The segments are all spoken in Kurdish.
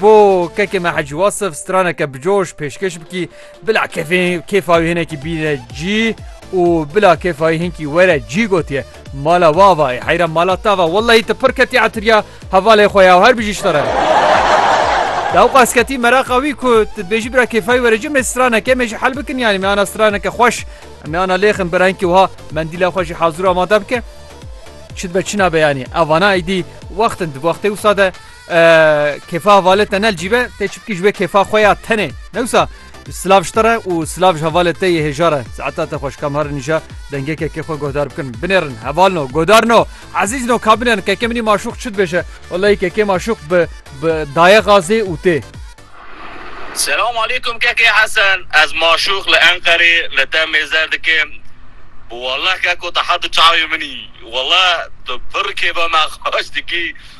Bo kekê me Hecî Wasif straneke bi coş pêşkêş bikî. Bila kefê kêfa wî hinekî bîne cî û bila kêfa wî hinkî were cî gotiye. Mala wa va ê heyra mala ta va. Wellahî tu pir ketî etiriya hevalê xwe ya û her bijî ji te re be. Daw qas ketî meraqa wî ku tu dibêjî bira kêfa wî were cî mê straneke mê jî hel bikin yanî mê ana straneke xweş em ê ana lêxin bira hinkî wiha mendîla xwe jî hazir û amade bike. Çi dibe çi nabe yanî. Ev vana êdî wextin di wextê wisa de Kêfa hevalê te ne cî be tê çi bikî ji wê kêfa xwe ya tenê newsa silav ji te re û silav ji hevalê te yê hêja re saeta te xweş kam herin nîşa dengekekê xwe guhdar bikin binêrin heval no godar no ezîz no ka binêrin keke minî maşûq çi dibêje Wallahî kekê maşûq bi bi daye xazê û tê Selam aleykum kekê Hesen ez maşûq li Enqerê li te mêzer dikim Wallah keko te hatu çavê minî Wallah tu pir kêfa me xweş dikî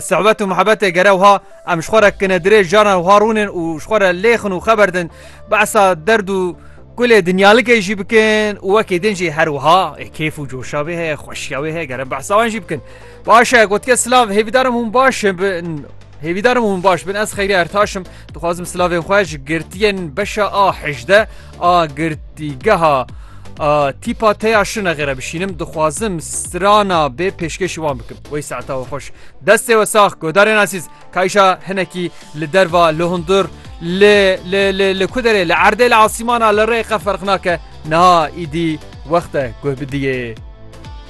Sihbet û mihebetê gere wiha em ji xwe re kine dirêj caran wiha rûnin û ji xwe re lêxin û xeber din behsa derd û kulê dinyalikê jî bikin û wekî din jî her wiha ê kêf û coşa wê heye xweşiya wê heye gere behsa wan jî bikin. Baş e gotike silav hêvîdarim hûn baş bin hêvîdarim hûn baş bin ez xeyriya ertaşim dixwazim silavên xwe ji girtiyên beşa a hejde A girtîgeha a tîpa te ya şine xêre bişînim dixwazim strana bê pêşkêşî wan bikim wey saeta we xweş destê we sax godarên asîz kayşa hinekî li derva li hundur li li li li ku derê li erdê li asîmana li rê qe ferq nake niha îdî wexte guh bidiyê